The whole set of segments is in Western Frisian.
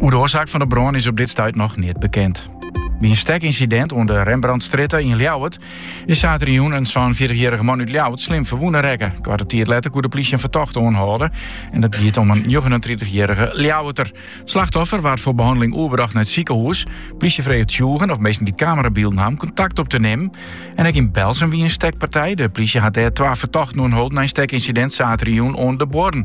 Oer de oarsaak fan de brân is op dit stuit noch neat bekend. By in stekincident oan de Rembrandtstrjitte yn Ljouwert is saterdeitejûn in 46-jierrige man út Ljouwert slim ferwûne rekke. Koarte tiid letter koe de plysje in fertochte oanhâlde en dat giet om in 39-jierrige Ljouwerter. It slachtoffer waard foar behanneling oerbrocht nei it sikehûs. De plysje freget tsjûgen of minsken dy't kamerabylden ha om kontakt op te nimmen. En ek yn Berltsum wie in stekpartij. De plysje hat dêr twa fertochten oanholden nei in stekincident saterdeitejûn oan de Buorren.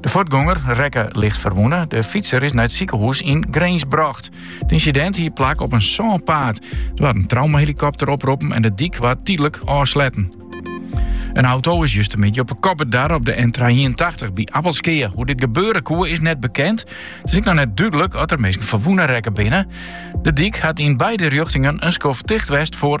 De fuortgonger rekke licht ferwûne. De fytser is nei it sikehûs yn Grins brocht. It ynsidint hie plak op in sânpaad. Der waard in traumahelikopter oproppen en de dyk waard tydlik ôfsletten. In auto is justemiddei op 'e kop bedarre op de N381 by Appelskea. Hoe dit gebeure koe is net bekend. It is ek noch net dúdlik oft der minsken ferwûne rekke binne. De dyk hat yn beide rjochtingen in skoft ticht west foar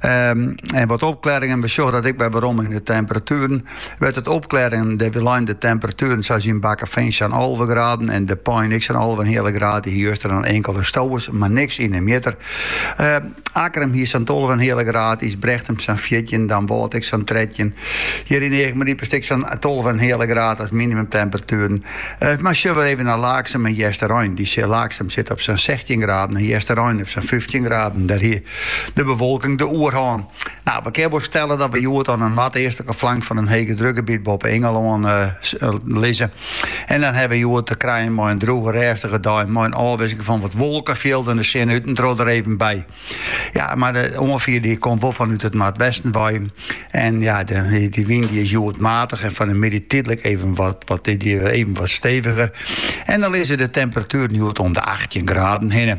En wat opklaringen, we sjogge dat ek wer werom yn de temperatueren. Wêr't it opklearret, dêr lizze de temperatueren sa as yn Bakkefean sa'n alve graden en De Pein ek sa'n alve en in heale graden. Hie juster dan inkele stowers, mar niks yn de mjitter. Uh, Akkrum hie sa'n tolve en in heale graden, Ysbrechtum sa'n fjirtjin, Damwâld ek sa'n trettjin. Hier yn Earryp-stik sa'n tolve en in heale graden as minimumtemperatueren. Uh, mar sille we even nei Laaksum en Easterein. Laaksum sit op sa'n 16 graden en Easterein op sa'n 15 graden. Dêr hie De bewolking de oerhân. Nou, we kinne wol stelle dat we hjoed oan de noardeastlike flank fan in hegedrukgebiet boppe Ingelân eh, eh, lizze. En dan hawwe we hjoed te krijen mei in droege rêstige dei mei in ôfwisseling fan wat wolkefjilden, de sinne út en troch der even by. Ja, mar de oanfier dy komt wol fanút it noardwesten wei. En ja, de, dy wyn dy is hjoed matig en fan 'e middei tydlik even wat, wat, dy even wat steviger. En dan lizze de temperatueren hjoed om de 18 graden hinne.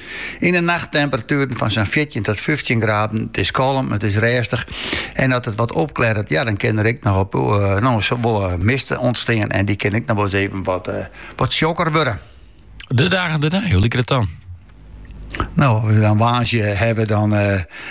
Yn 'e nacht temperatueren fan sa'n fjirtjin tot fyftjin graden. It is kalm, it is rêstich en as it wat opklearret, ja, dan kin der ek noch no wol wat mist ûntstean en dy kin ek noch wolris even wat, wat tsjokker wurde. De dagen dêrnei, hoe liket it dan? No, as we dan woansdei hawwe, dan.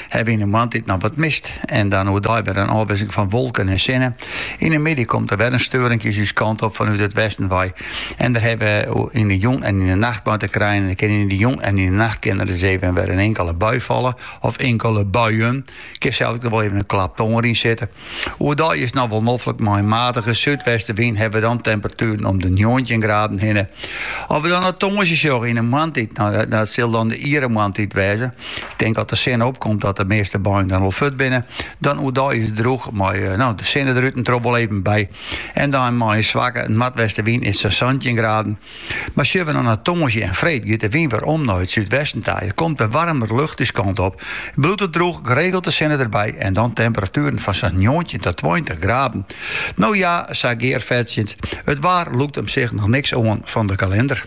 Hawwe we yn 'e moarntiid noch wat mist en dan oerdei wer in ôfwisseling fan wolken en sinne. Yn 'e middei komt der wer in steurinkje ús kant op fanút it westen wei en dêr hawwe we yn 'e jûn en yn 'e nacht mei te krijen. Der kin yn 'e jûn en yn 'e nacht kin der ris even wer in inkele bui falle of inkele buien. Kin sels ek noch wol even in klap tonger yn sitte. Oerdei is noch wol noflik, mei in matige súdwestewyn hawwe we dan temperatueren om de njoggentjin graden hinne. As we dan no tongersdei sjogge yn 'e moarntiid, no dat sil dan de iere moarntiid wêze. Ik tink as de sinne opkomt dat de measte buien dan al fuort binne. Dan oerdei is it droech mei no de sinne der út en troch wol even by. En dan mei in swakke noardwestewyn is sa'n santjin graden. Mar sjogge we no nei tongersdei en freed, giet de wyn wer om nei it súdwesten ta. Der komt wer waarmere lucht ús kant op. It bliuwt droech, geregeld de sinne derby en dan temperatueren fan sa'n njoggentjin tot tweintich graden. No ja, sa gearfetsjend, it waar lûkt him sich noch niks oan fan de kalinder.